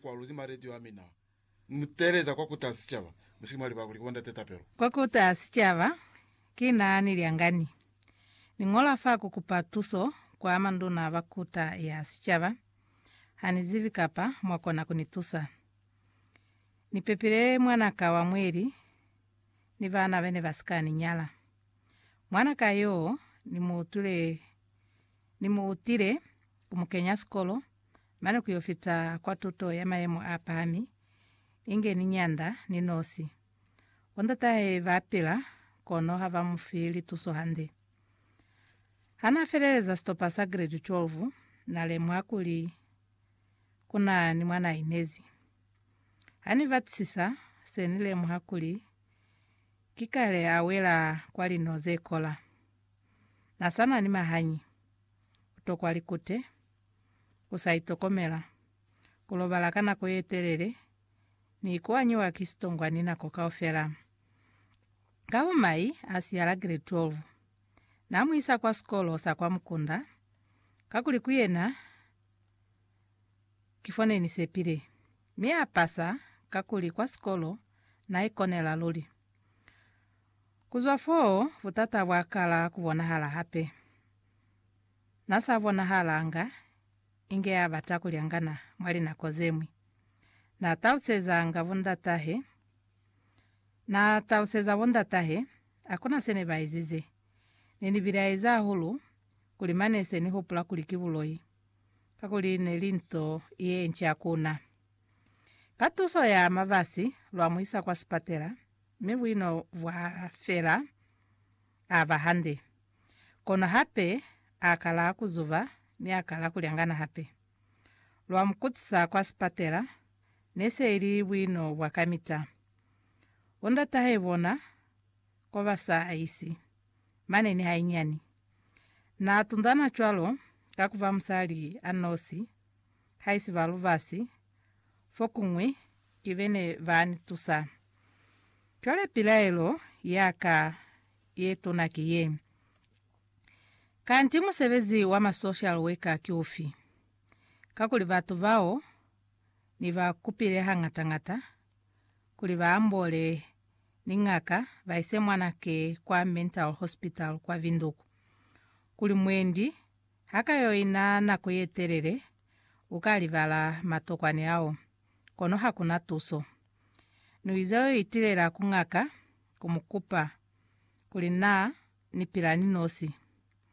Kwaluzi mwa redio ya mina. Ni mu teeleza kwa Kuta Sicaba. Musiki mwa libakuli ku bo Ndate Tapelo. Kwa Kuta Sicaba, ki na ni lyangani. Ni ñola fa ku kupa tuso kwa manduna ba Kuta ya Sicaba. Ha ni zibi kapa mwa kona ku ni tusa. Ni pepile mwana ka wa mweli ni bana bene ba si ka ni nyala. Mwana ka yoo ni mu utwile Ni mu utile, ku mu kenya sikolo, mane ku yo fita kwa tuto ya mayemo a pahami, inge ni nyanda, ni nosi. Bo ndatahe ba pila, kono ha ba mu fi lituso hande. Ha na feleleza sitopa sa grade 12, na lemuha kuli ku na ni mwa na inezi. Ha ni batisisa, se ni lemuha kuli ki kale a wela kwa lino ze kola. Na sa na ni mahañi, ku tokwa likute, ku sa itokomela, ku lobala ka nako ye telele, ni kuanyiwa ki sitongwani nako kaufela. Ka bo mai a siya la grade 12, na mu isa kwa sikolo sa kwa mukunda, kakuli ku yena ki fo ne ni sepile. Mi a pasa kakuli kwa sikolo na ikonela luli. Ku zwa foo, butata bwa kala ku bonahala hape. Na sa bonahalanga inge a bata ku lyangana mwa linako ze ñwi. Na talusezanga bondatahe, na taluseza bondatahe, Hakuna se ne ba ezize. Ne ni bilaezi hahulu kuli mane se ni hupula kuli ki buloi, kakuli ne li nto ye nca ku na. Ka tuso ya mabasi lwa mu isa kwa sipatela, mi buino bwa fela. A ba hande. Kono hape a kala ku zuba mi a kala ku lyangana hape. Lwa mu kutisa kwa sipatela, ne se ili buino bwa kamita. Bo ndatahai bona ko ba sa isi. Mane ni hainyani. Na tundana cwalo ka ku ba musali a nosi haisi ba lubasi, fokuñwi ki bene ba ni tusa. Cwale pilaelo ya ka ye tuna ki ye, Kanti musebezi wa ma social worker ki ufi? Kakuli batu bao ni ba kupile hangata-ngata kuli ba amboole ni ñaka ba ise mwana ke kwa mental hospital kwa Vinduku kuli mwendi Ha ka yo ina nako ye telele, u ka libala matokwani ao, kono ha ku na tuso. Ni uiza yo itilela ku ngaka, ku mu kupa kuli naa ni pila ni nosi.